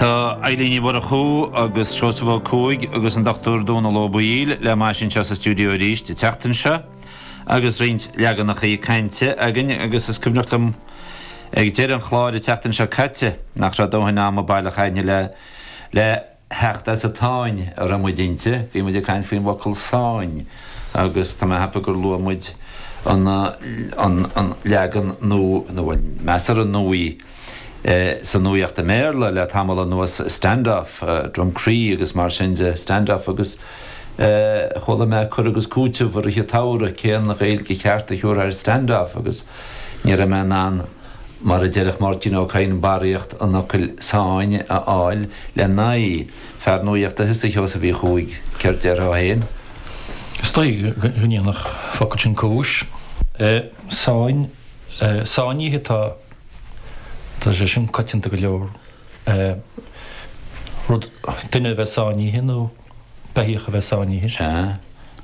Tá Eibhlín Ní Mhurchú agus Seosamh Ó Cuaig agus an Dr Dónall Ó Baoill le m'ais anseo sa stiúideo arís an tseachtain seo agus roinnt leaganachaí cainte againn agus is cuimhneach liom ag deireadh an chláir an tseachtain seo caite nach raibh dóthain ama baileach againn le le theacht as an tsáinn a raibh muid inti. Bhí muid ag caint faoin bhfocal sáinn agus tá mé ag ceapadh gur luaigh muid an leagan nua nó an measartha nuaí. sa nuaíocht i mBéarla le tamall anuas, stand-off, Drumcree agus mar sin de, stand-off agus chuala mé cur agus cúiteamh i rith an tsamhraidh, cén Ghaeilge cheart a thiúrfá ar stand-off agus ní raibh mé in ann, mar a déarfadh Máirtín Ó Cadhain, barraíocht an fhocail sáinn a fháil lena aghaidh. Fear nuaíochta thusa, a Sheosaimh Uí Chuaig, céard déarfá féin? Is dóigh go ndéanfadh an focal sin cúis. Sáinnithe atá. Tá sé sin coitianta go leor, rud, duine a bheith sáinnithe nó beithíoch a bheith sáinnithe. Sea,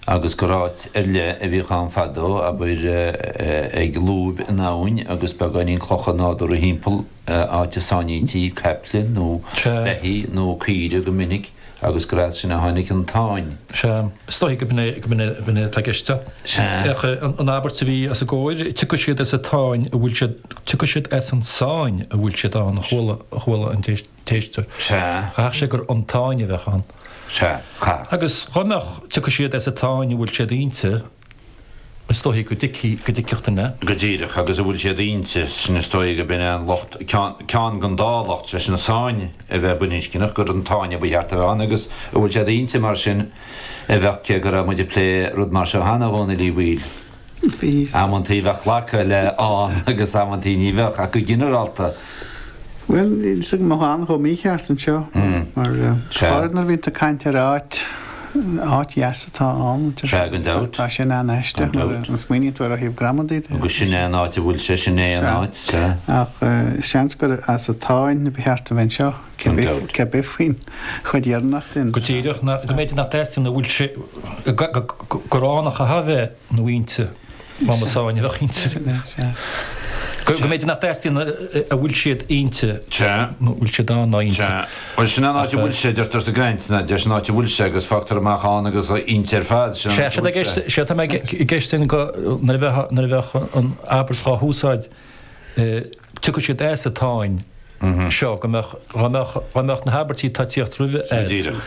agus gur áit ar leith a bhíodh ann fadó, abair, ag lúib in abhainn agus beagáinín clocha nádúrtha thimpeall, áit a sáinníti caiple nó beithígh nó caoire go minic. agus gur as sin a tháinig an tsáinn. Sea, is dóichí gurb in é atá i gceist. Féach an abairt a bhí os ár gcomhair, 'Tiocfaidh siad as an tsáinn a bhfuil siad, tiocfaidh siad as an sáinn a bhfuil siad ann, a chuala an t-éisteoir. Chaithfeadh sé gur an tsáinn a bheadh ann. Agus dhá mbeadh, 'Tiocfaidh siad as an tsáinn a bhfuil siad inti. Is dóichí go dtuigfidh, go dtuigfeadh duine. Go díreach agus a bhfuil siad inti, sin is dóigh gurb in é an locht, ceann den dá locht, sé sin, a sáinn a bheith baininscneach, gur an tsáinn a ba cheart a bheith ann agus a bhfuil siad inti mar sin a bheadh, cé go raibh muid ag plé rud mar seo cheana, a Dhónaill Uí Bhaoill. Amantaí bheadh glacadh le ann agus amantaí ní bheadh, ach go ginearálta, Bhuel, níl a fhios agam go mbeadh ann chomh mícheart anseo mar, abair, nuair a bhíonn tú ag caint ar áit, áit dheas atá ann, tá sin an-aisteach nuair a smaoiníonn tú ar ó thaobh gramadaí de. Agus sin é an áit a bhfuil sé, sin é an áit, sea. Ach seans gur as an tsáinn ba cheart a bheith anseo, cé bith faoin chuid dheireanach sin. Go díreach, go mb'fhéidir nach dteastaíonn, go bhfuil sé, go gránach a bheith. ná inti, dá mba sáinn a bheadh inti. Go mb'fhéidir nach dteastaíonn a bhfuil siad inti nó bhfuil siad ann ná inti. Bhuel, sin an áit a bhfuil sé, deirtear sa gcainteanna, deir sin áit a bhfuil sé agus fágtar amach ann agus inti ar fad, sin an áit a bhfuil sé. Sé, sé, atá i gceist ansin go, nuair a bheadh, nuair a bheadh an abairt dhá húsáid, tiocfaidh siad as an tsáinn seo, go mbeadh, dá mbeadh, dá mbeadh na habairtí atá ag tíocht roimhe. Díreach.